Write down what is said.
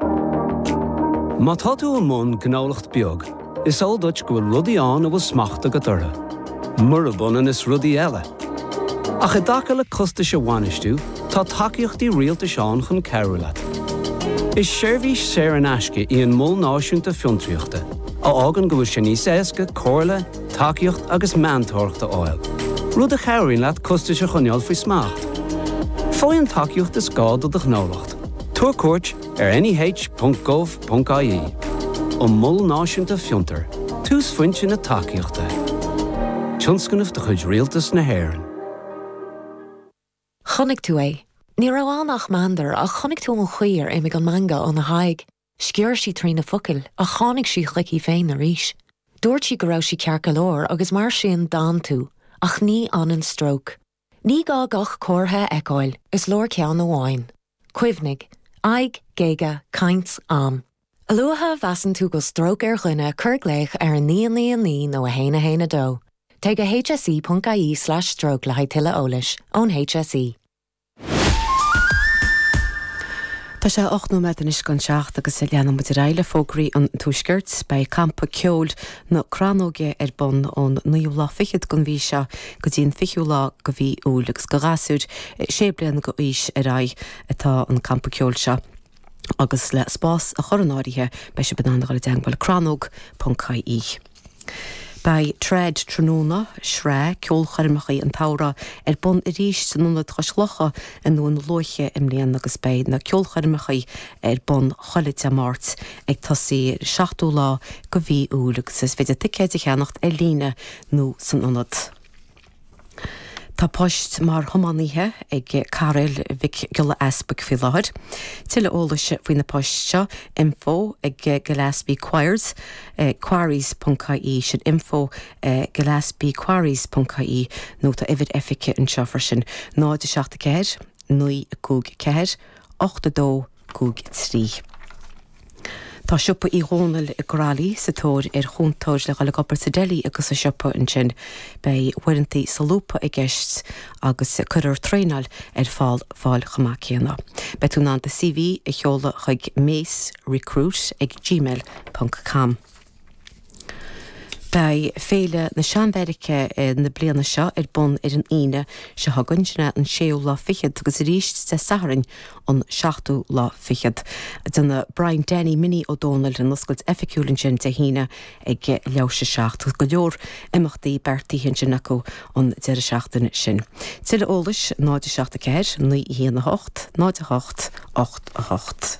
Má tá tú i mbun gnólacht beag, is eol duit go bhfuil rudaí ann a bhfuil smacht agat orthu, murab ionann is rudaí eile. Ach i dtaca le costais a bhainistiú, tá tacaíochtaí rialtais ann chun cabhrú leat. Is seirbhís saor in aisce í an Mol Náisiúnta Fiontraíochta, a fhágann go bhfuil sé níos éasca comhairle, tacaíocht agus meantóireacht a fháil, rud a chabhraíonn leat costais a choinneáil faoi smacht. Faigh an tacaíocht is gá do do ghnólacht. Tabhair cuairt ar neh.gov.ie an Mol Náisiúnta Fiontar, túsphointe na tacaíochta. Tionscnamh de chuid Rialtas na hÉireann. Chonaic tú é. Ní raibh ann ach meandar, ach chonaic tú an chaoi ar imigh an meangadh óna haghaidh. Sciorr sí trí na focail, ach tháinig sí chuici féin arís. Dúirt sí go raibh sí ceart go leor, agus mar sin d'fhan tú. Ach ní fhanann stróc. Ní gá gach comhartha a fheiceáil, is leor ceann amháin. Cuimhnigh, aghaidh, géaga, caint, am. A luaithe a mheasann tú go bhfuil stróc ar dhuine cuir glaoch ar 999 nó 112. Téigh go hse.ie/stroke le haghaidh tuilleadh eolais ón HSE. Tá sé ocht nóiméad anois don seacht agus leanann muid ar aghaidh le fógraí an Tuaiscirt. Beidh campa ceoil. na crannóige ar bun ón naoú lá fichead den mhí seo go dtí an fichiú lá de mhí Iúil agus do ghasúir sé bliana d'aois ar aghaidh atá an campa ceoil seo agus le spás a chur in áirithe beidh sibh in ann a dhul i dteangmháil crannóg ponc ie Beidh Trad Tráthnóna, sraith ceolchoirmeacha an tsamhraidh, ar bun arís san Ionad Cois Locha i nDún Lúiche i mbliana agus beidh na ceolchoirmeacha ar bun chuile Dé Máirt ag tosaí ar an 7ú lá de mhí Iúil agus is féidir ticéid a cheannacht ar líne nó san ionad. Tá poist mar thiománaithe ag Cairéil Mhic Giolla Easbuic faoi láthair. Tuilleadh eolais faoi na poist seo, info ag gillespie quar, quarries ponc ie, sin info ag gillespiequarries ponc ie nó tá uimhir oifige anseo freisin, 074 954 82. Cúig a trí. Tá siopa Uí Dhónaill i gCroithlí sa tóir ar chúntóir le dhul ag obair sa deli agus sa siopa ansin. Beidh uaireantaí solúbtha i gceist agus cuirfear traenáil ar fáil fáil chomh maith céanna. Beidh tú in ann do CV a sheoladh chuig mace recruit ag gmail ponc com. Beidh Féile na Seanbheairice na bliana seo ar bun ar an Aoine seo chugainn, sin é an séú lá fichead, agus arís Dé Sathairn an seachtú lá fichead. Déanfaidh Brian Danny Minnie Ó Dónaill an oscailt oifigiúil ansin Dé hAoine ag leathuair tar éis a seacht. Tá go leor imeachtaí beartaithe ansin acu an deireadh seachtaine sin. Tuilleadh eolais 0 7 4 9 1 8 0 8 8 8.